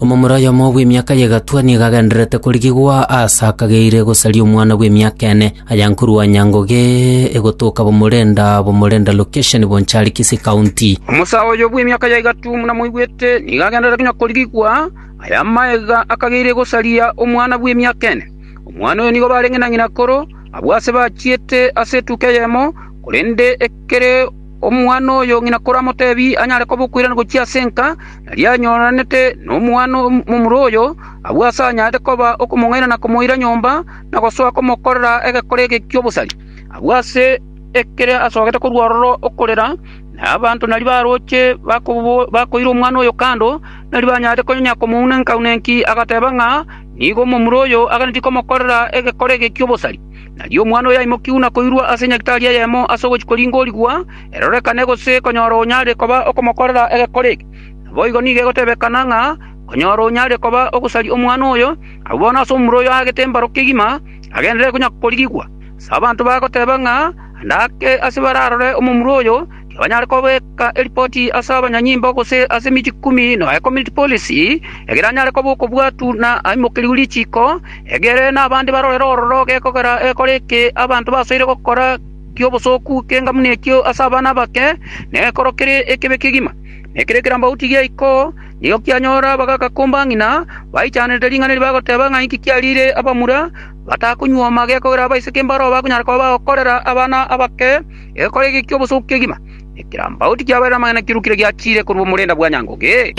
Omomura oyomo bw'emiaka y'egatwa nigo agendererete korigigwa aase akageire gosaria omwana bw'emiaka ene. Aya nkorwa Nyangoge egotoka Bomorenda, Bomorenda location, Bonchari, Kisii County. Omosa oyo bw'emiaka ya egatwa omuna moigwete nigo agendererete konya korigigwa aya magega akageire gosaria omwana bw'emiaka ene. Omwana oyo nigo bare ng'ina ng'ina akoro abwo aase bachiete ase etuko eyemo korende ekere Omwana oyo ng'ina koramotebi anyare kobokwirana gochia ase enka, nari anyoranete nomwana momura oyo, agwo ase anyarete koba okomong'aina na komoira nyomba, na gosoa komokorera egekore eke ki'obosari. Agwo ase ekere asogete korwa ororo okorera, na abanto nario baroche bakoira omwana oyo kando, nari banyarete konya komounenka-unenki, agateba ng'a nigo momura oyo aganetie komokorera egekore eke ki'obosari. Nario omwana oyoimokiu na koirwa ase nyagetari eyemo ase ogochia koringa origwa, erorekane gose konyora onyare koba okomokorera egekore eke. Naboigo nigo egotebekana ng'a konyora onyare koba ogosaria omwana oyo, abwo bono ase omura oyo aagete mbaro kegima, agenderere konya korigigwa. Ase abanto bagoteba ng'a ande ake ase bararore omomura oyo, nabanyare kobeka eripoti ase abanyanyimbo gose ase emechie ikomi na community policy, egere anyare koba okobwatu na aimokerigwe richiiko, egere nabande barorere ororo gekogera gekore eke abanto basoire gokora ki'obosooku k'engamu nekio ase abana abake, nekoro kere ekebe kegima. Na ekero ekerambaoti giaiko, nigo kianyora abagaka komba ng'ina, baichanerete ring'ana eri bagoteba ng'a inki kiariire abamura batakonyuoma gekogera abaiseke mbaro bakonyara koba bagokorera abana abake, Egekore eke ki'obosooku kegima nekerambagu tikiabaire namang'ana kirukire giachiire korwa omorenda bwa nyangoge.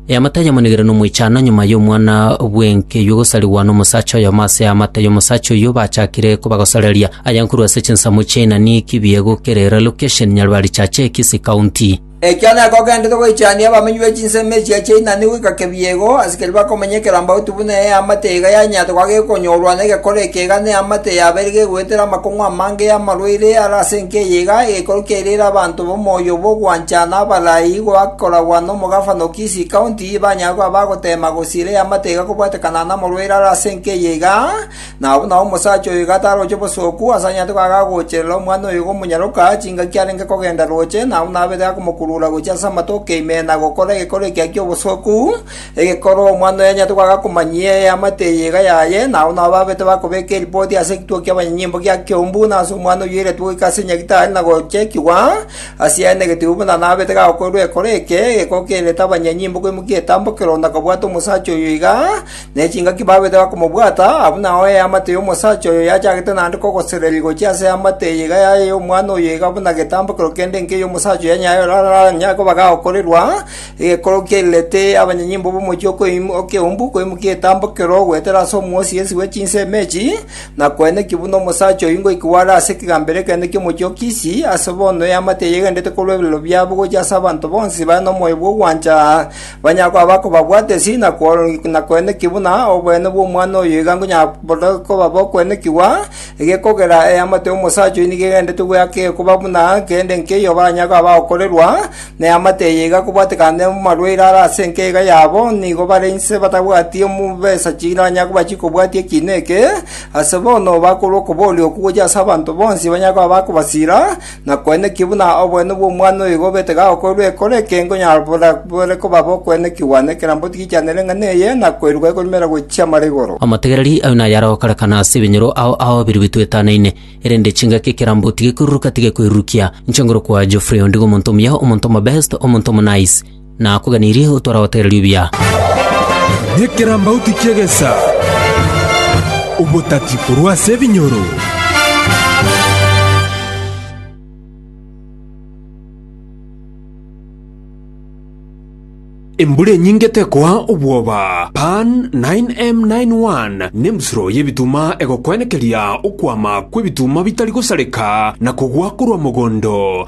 Eamate ayamonigire nomoichano nyuma y'omwana bw'enkeyua gosarigwa nomosacha oyomo ase eamate y'omosacha oyio bachakire kobagosoreria. Aya nkorwa ase chinsemo chi'Ainani, Kibiego, Kerera, Location, Nyaribari Chache, Kisii County. Ekio nekogenderete goichania abamenyi be chinsemo echio chia inani goika kebiego, asikeri bakomenya ekerambauti buna eamate iga yanyarete koba gekonyorwa negekore ekeiga na eamate yabeire gegoetera amakong'u amange y'amarwaire are ase enka eye iga egekorwa kiairere abanto b'omoyo bw'ogwancha na abarai goa koragwa nomogafana o Kisii County banyare koba bagoteema gosiira eamate iga kobwatekanana namorwaire are ase enka eye iga Na buna omosacha oyo iga taroche bosooku, asanyarete goaka agocherera omwana oyo omonyaroka, chingaki arenge kogenda roche, na buna abete akomokurura gochia ase amatoke ime na gokora egekoro ekiya ki'obosooku, egekoro omwana oyo anyarete goaka komanyia eamate eye iga yaye, na buna babete bakobeka eripoti ase ekituo ki'abanyanyimbo gia Keumbu, na ase omwana oyio oiretwe goika ase nyagetari na gochekigwa, ase yaye na egetubu buna nabete gakoirwa ekero eke, egekoo kererete abanyanyimbo koimokia etambo kero, na kobwata omosacha oyo iga. ne chingaki babete bakomobwata, abwo nao eamate y'omosacha oyo yachagete naende kogosererigwa gochia ase eamate eye iga yaye y'omwana oyo iga buna getambokero kende inke y'omosacha oyo nyayo oraranyare koba gagokorerwa, egekoro kiairerete abanyanyimbo b'omochie okoim- okeumbu koimokia etambokero goetera ase omwosi ensi bwe chinsemo echi, na koenekio buna omosacha oyio ngoikwa are ase ekegambero ekenene ki'omochie o Kisi, ase bono eamate eye egenderete korwa ebirero biabo gochia ase abanto bonsi bare nomoyo bw'ogwancha, Banyakwa abakobabwata esiri na kworokia na kweneki buna oboene bw'omwana oyo iga nkonyara buna koba bokwenekigwa, egekogera eamate y'omosacha oyo nigo egenderete gweaka ekoba buna kende nkeiyo banyakwa bagokorerwa, na eamate eye iga kobwatekane amarwaire are ase enka iga yabo, nigo bare inse batabwati chibesa chiranyare koba chikobwatia ekiina eke, ase bono bakorwa okobooria okwo gochia ase abanto bonsi banyakwa bakobasira, Na kweneki buna oboene bw'omwana oyo igo obete gagokorwa ekero ekengo nyabora bore koba bokwenekigwa nekerambe otigichanere ng'a neye, na koirwa ekorumera gochia amara igoro. Amategereri ayo naye aragokarekana ase ebinyoro ao aobirirwe twetanaine, erende chingaki ekerambe otige koiruruka tige koirurukia. Inche ngorokwa Geoffrey ondigo omonto omuya, omonto omobest, omonto omonaice. Nakoganirie otware goteera ribia. Nekerambauti ki'egesa, obotati korwa ase ebinyoro. Embura enyinge tekoa obwoba. Pan 9M91 nembusuro y'ebituma egokwenekeria okwama kw'ebituma bitari gosareka na kogwa korwa mogondo.